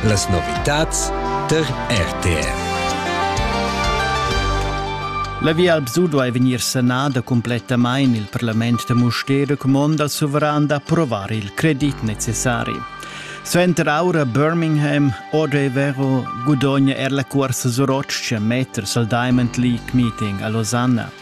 Las novitads tar RTR. La Via Alpsudo è vegnir sanada complettamain. Il parlament da Mustér comanda al suveran d'approvar il credit necessari. Suenter aura Birmingham, Odevero gudogna er la cursa Soroccia meters al Diamond League Meeting a Losanna.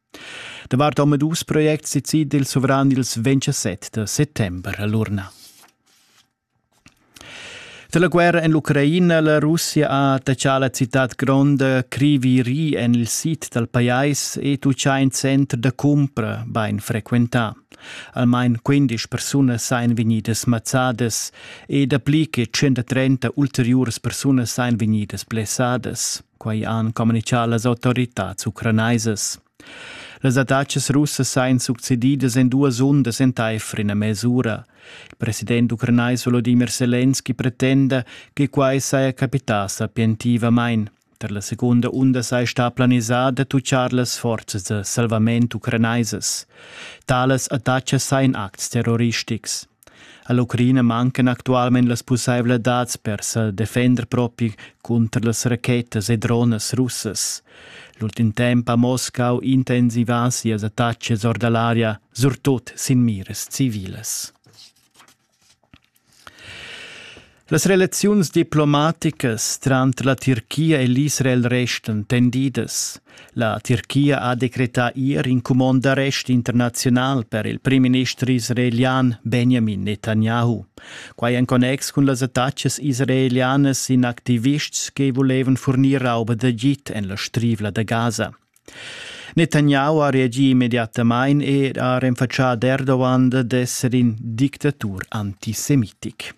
Davart omadus projects decida il suvran ils 27 da settember a l'urna. Da la guerra en l'Ucraina la Russia ha taxà la citad gronda Kriviri en il sid dal pajais ed uschè in center da cumpra bain frequentà. Almain 15 persunas sain vegnidas mazzadas e dapli che 130 ulteriuras persunas sain vegnidas blessadas. Quai han communitgà las autoritads ucranaisas. Las attacas russas sain succedidas en duas undas entaifer ina mesura. Il president ucranais Volodymyr Selenski pretenda che quai saja capità sapientivamain. Per la seconda unda sei sta planisada tucciar las forzas de salvament ucranaisas. Tales attacas sein acts terroristics. All'Ucraina mancan actualmein las pusseivladads per sa defender propi cunter las rachetas e dronas russas. L'ultim temps ha Moscau intensivà sias attacas or dall'aria, surtut sin miras civilas. Las relaziuns diplomaticas tranter la Tirchia e l'Israel restan tendidas. La Tirchia ha decretà ier in cumond d'arrest internaziunal per il primminister israelian Benjamin Netanyahu. Quai en connex cun las attacas israelianas in activists che volevan fornir rauba d'agid en la strivla da Gaza. Netanyahu ha reagì immediatamain e ha renfatschà ad Erdogan d'esser in dictatur antisemitic.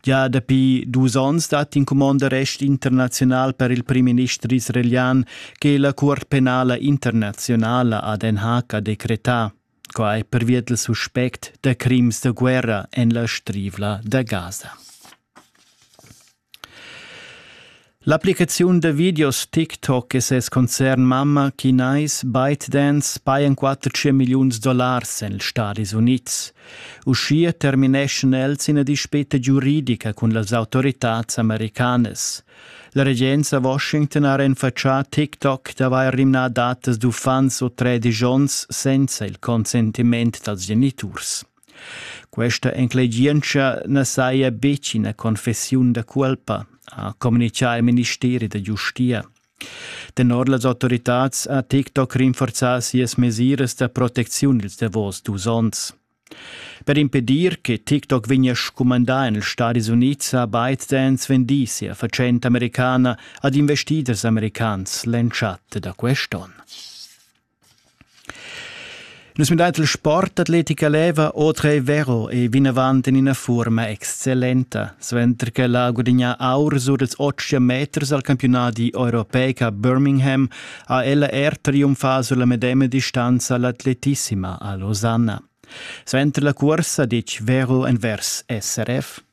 Gia dapi dus onns dat in cumond d'arrest internaziunal per il primminister israelian che la Cuort penala internazionala a Den Haag ha decretà. Quai pervia dal suspect da crims da guerra en la Strivla da Gaza. L'applicaziun da videos TikTok e ses concern Mamma Kinais ByteDance pajan 400 milliuns dollars en ils Stadis Unids. Uschia termineschan els ina dispeta giuridica cun las autoritads americanas. La regenza Washington ha renfatschà TikTok d'avair rimnà datas d'uffants o tredici onns senza il consentiment dals geniturs. Questa enclegientscha na saja betg ina confessiun da cuolpa, ha communitgà il ministeri da giustia. Tenor las autoritads ha TikTok rinforzà sias mesiras da protecziun ils davos dus onns. Per impedir che TikTok vegnia scumandà en ils Stadis Unids ha ByteDance vendì sia fatschenta americana ad investiders americans l'entschatta da quest onn. Nus müdait il sport atletica leva otre vero e vinavant in ina forma excellenta, suenter che la gudigna aur sur dels 80 meters al campionati europeica Birmingham ha ella er triumfà sur la medema distanza l'atletissima a Losanna. Suenter la cursa dic vero envers SRF.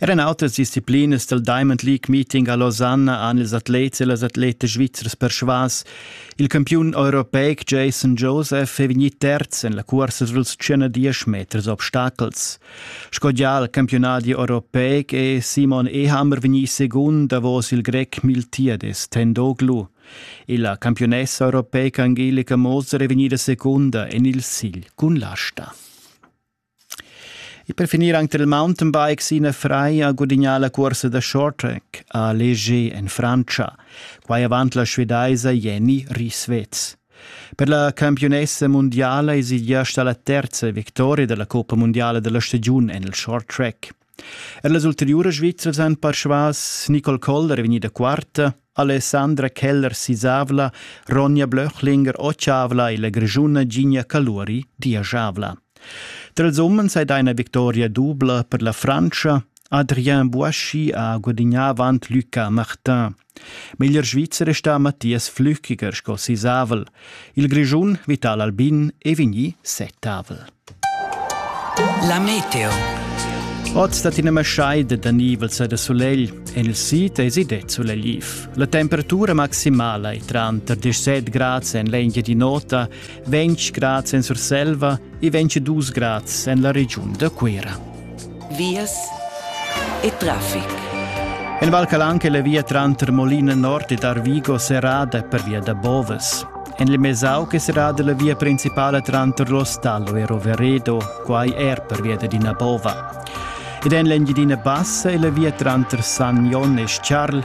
Er en autras disciplinas del Diamond League Meeting a Lausanne han ils atlets e las atletas svizzers persvas il campiun europeic Jason Joseph è vegnì terz en la cursa suls 110 meters obstacels. Sco già al campionat europeic è Simon Ehammer vegnì secund davos il grec Miltiades Tendoglu. E la campionessa europeica Angelika Moser è vegnida secunda en il sigl cun l'asta. E per finir anche il mountainbikes ina frai ha gudignà la cursa da shorttrack a Leger en Frantscha. Quai avant la svedaisa Jenny Rieswetz. Per la campionessa mundiala es il gest la terza victoria della Coppa Mondiale della stagiun en il short track. Er las ulteriuras Svizzers han persvas Nicole Koller vegnida quarta, Alessandra Keller-Sisavla, Ronja Blöchlinger Otschavla e la Grischuna Gigna Caluri diajavla. Tra ils umens è una victoria dubla per la Francia. Adrien Boischi ha guadagnà avant Lucas Martin. Meglier Svizzer è stà Mathias Flüchiger sco sisavel. Il Grischun Vital Albin è vegnì settavel. La meteo. Oz dat ina maschaida da nivels e da sulegl. En il sid è det sulegliv. La temperatura maximala è tranter 17 grads en l'Engiadin'Ota, 20 grads en Surselva e 22 grads en la regiun da Cuira. vias e traffic. En Val Calanca è la via tranter Molina Nord ed Arvigo serrada per via da Boves. En il Mesauc è serrada la via principale tranter l'Ostallo e Roveredo, quai er per via di Nabova. Ed en l'Engiadina Bassa è la via tranter San Jon e Charl